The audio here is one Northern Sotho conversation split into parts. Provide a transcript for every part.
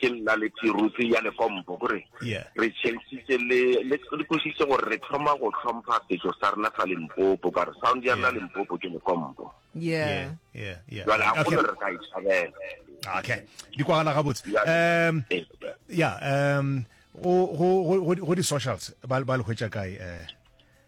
ke nna le tiruti ya lekompo gore re changitse le le kositse gore re thoma go tlhompha setso sa rena sa limpopo ka re sound ya rena limpopo ke lekompo yeah yeah yeah jwale a gone re ka e tshabela okay di kwagala gabotse um yeah um go go go di socials ba ba le hwetša kae eh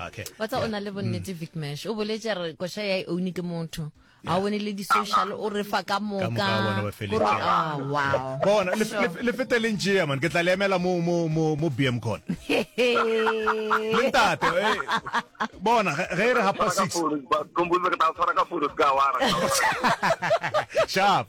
Okay. wa tsa o na le bonnete vic mash o boletse a re koša ya e own ke motho ga o bone le di-social o re fa ka Ka moka moka wa bona ba feletse. Gore- ah, wow bona le- Sure. le- le fete le ntšea man ke tla le emela mo mo mo mo bm con le ntate eh, bona ge ge e re hapa six Kombuza ke tla tshwara ka fono se ka wara. sharp